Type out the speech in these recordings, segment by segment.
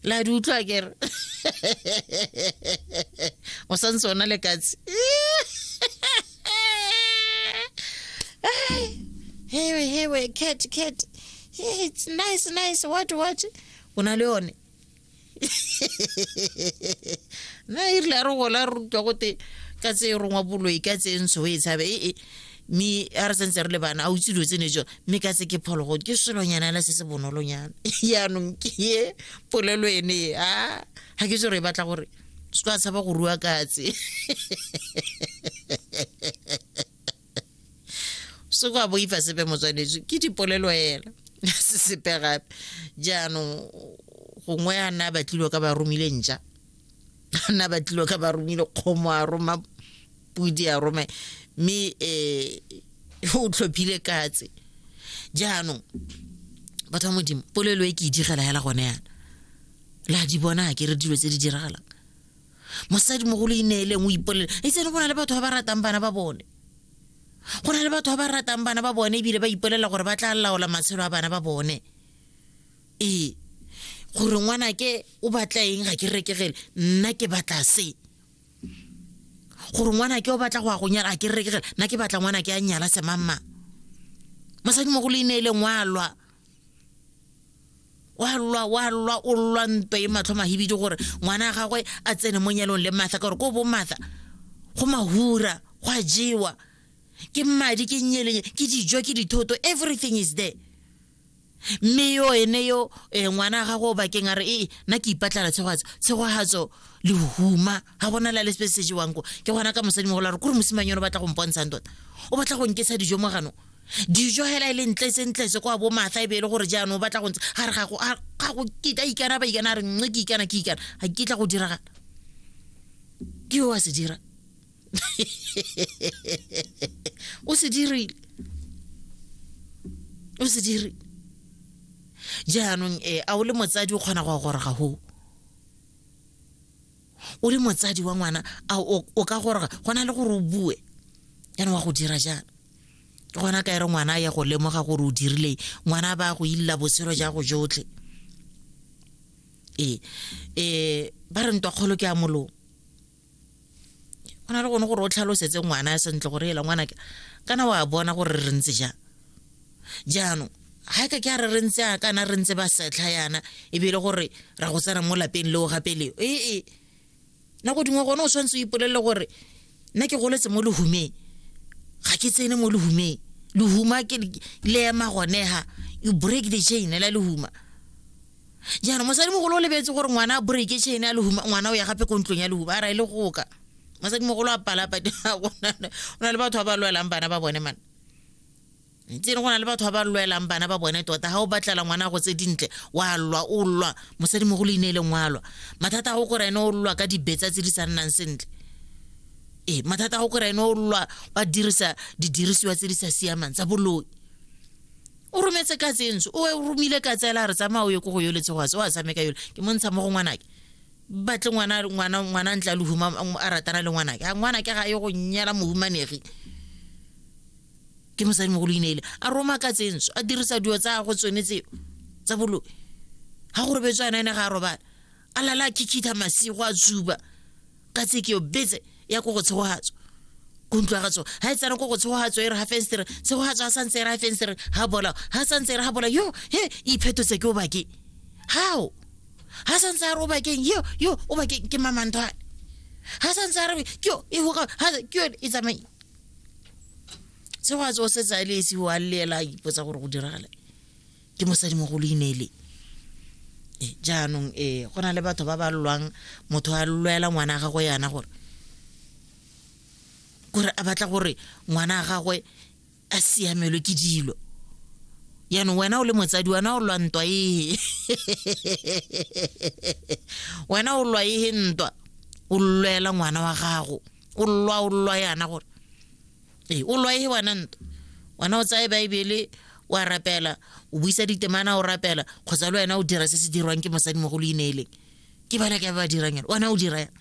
la di utlwa kere o sa ntse ona le katse hewe hewe cat cat Hey, it's nice nice what what o na le yone na e rile a re gola re rutwa gote ka tse e rongwa boloi ka tse ntsho e tshabe ee mme a re santse re le bana a utse dilo tsene jo mme ka se ke phologo ke selonyana ela se se bonolonyana yaanong ke ye polelo ene ye a ga ke tsore e batla gore se ka tshaba go rua katse se kwa boifa sepe motswanetswe ke dipolelo ela se sepe gape jaanong gongwe a nna a batlilwe ka ba romile ntša na ba tlilo ka ba romile kgomo a roma pudi a rome mme um o tlhophile katse jaanong batho ba modimo polelo e ke e digela hela gone yana la di bona ke re dilo tse di diragalang mosadi mogolo e neeleng o ipolela e tsene go na le batho ba ba ratang bana ba bone go na le batho ba ba ratang bana ba bone ebile ba ipolela gore ba tla laola matshelo a bana ba bone ee gore ngwana ke o batla eng ga ke rekegele nna ke batla se gore ngwana ke o batla go ya go nyala a ke rekegele nna ke batla ngwana ke a nyala semamma mosadi mogolo e ne e leng wa lwa wa lwa wa lwa o lwa nto e matlho mahibidi gore ngwana wa gagwe a tsene mo nyalong le matha ka gore ko bo matha go mahura go a jewa ke mmadi ke nyeleng ke dijo ke dithoto everything is there mme yo ene yo um ngwana a gago o bakeng a re ee nna ke ipatlala tshegogatso tshegogatso lehuma ga gona la le sepe se jewang ko ke gona ka mosadi mogolo a re kore mosimang yone o batla go mpontshang tota o batla go nkesa dijo mo ganong dijo hela e le ntle sentlese kwa bo matha e be e le gore jaanong o batla go ntse ga re gago gago kita ikana ba ikana a re nne ke ikana ke ikana ga ke tla go diragala ke yo wa se dira o se dirile o se dirile jaanong e a o le motsadi o kgona go ya goroga go o le motsadi wa ngwana a o o ka goroga go na le gore o bue yana wa go dira jang ke gona ka e re ngwana a ya go lemoga gore o dirileng ngwana ba go illa botshelo ja go jotlhe ee ee ba re ntwa kgolo ke a molong go na le gone gore o tlhalosetse ngwana sentle gore ela ngwana ke kana wa bona gore re ntse jang jaanong ga e ka ke a re re ntse a kana re ntse ba setlha yana ebile gore ra go tsena mo lapeng leo gape leo ee nako dingwe gone o tshwanetse o ipolelele gore nna ke goletse mo lehumeng ga ke tsene mo lehumeng lehuma ke le ema gonega you break the chain la lehuma jaanong mosadi mogolo o lebetse gore ngwana a breake chain a lehuma ngwana o ya gape ko ntlong ya lehuma a ra e le goka mosadi mogolo a palapa o na le batho ba ba lwelang bana ba bone mana ntse go na le batho ba ba lwelang bana ba bone tota ga o batlela ngwana go tse dintle wa lwa o lwa mosadi mo go le ine leng wa lwa mathata a go kore ene o lwa ka dibetsa tse di sa nnang sentle ee mathata a go kore ene o lwa ba dirisa didirisiwa tse di sa siamang tsa boloi o rometse ka tsenso o romile ka tsela re tsamaya o ye ko go yoletse go atse o a tshameka yole ke mo ntsha mo go ngwanake batle ngwana ngwana ngwana ntla le huma a ratana le ngwana ke ngwana ke ga e go nyela mohumanegi ke mosadi mogolo ineile a roma ka tsenso a dirisa dio tsa go tsone tseo tsa bolo ha go robetswana ene ga a robala a lala a kikitha masigo a tsuba ka tse ke yo betse ya ko go tshegogatso ko ntlwa ga tsone ga e tsena ko go tshegogatso e re ga fenstere tshegogatso ga santse e re ga fenstere ga bola ga santse e re ga bola yo he iphetotse ke o bakeng gao ga santse a re o bakeng yo yo o bakeng ke mamanthwane ga santse a re ke yo e hoka ke yo e tsamaye tshegogatso o setse a le esi o a leela a ipotsa gore go diragala ke mosadimogolo inele eh, jaanong e go na le batho ba ba lwang motho a lwela ngwana a gagwe yana gore gore a batla gore ngwana a gagwe a siamelwe ke dilo yaanong wena o le motsadi wena o lwa ntwa ee wena o lwa ee ntwa o lwela ngwana wa gago o lwa o lwa yana gore ee o lwae wana nto wana o tsaye baebele wa rapela o buisa ditemana o rapela kgotsa le wena o dira se se dirwang ke mosadi mo go le ineeleng ke bana ke ba ba dirang yone wana o dira yang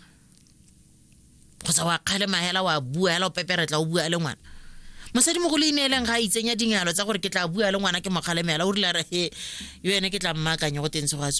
kgotsa wa kgale mahela wa bua hela o peperetla o bua le ngwana mosadi mo go le ineeleng ga a itsenya dingalo tsa gore ke tla bua le ngwana ke mokgalemela o rile a re he yo ene ke tla mmaakanye go teng tshegoatso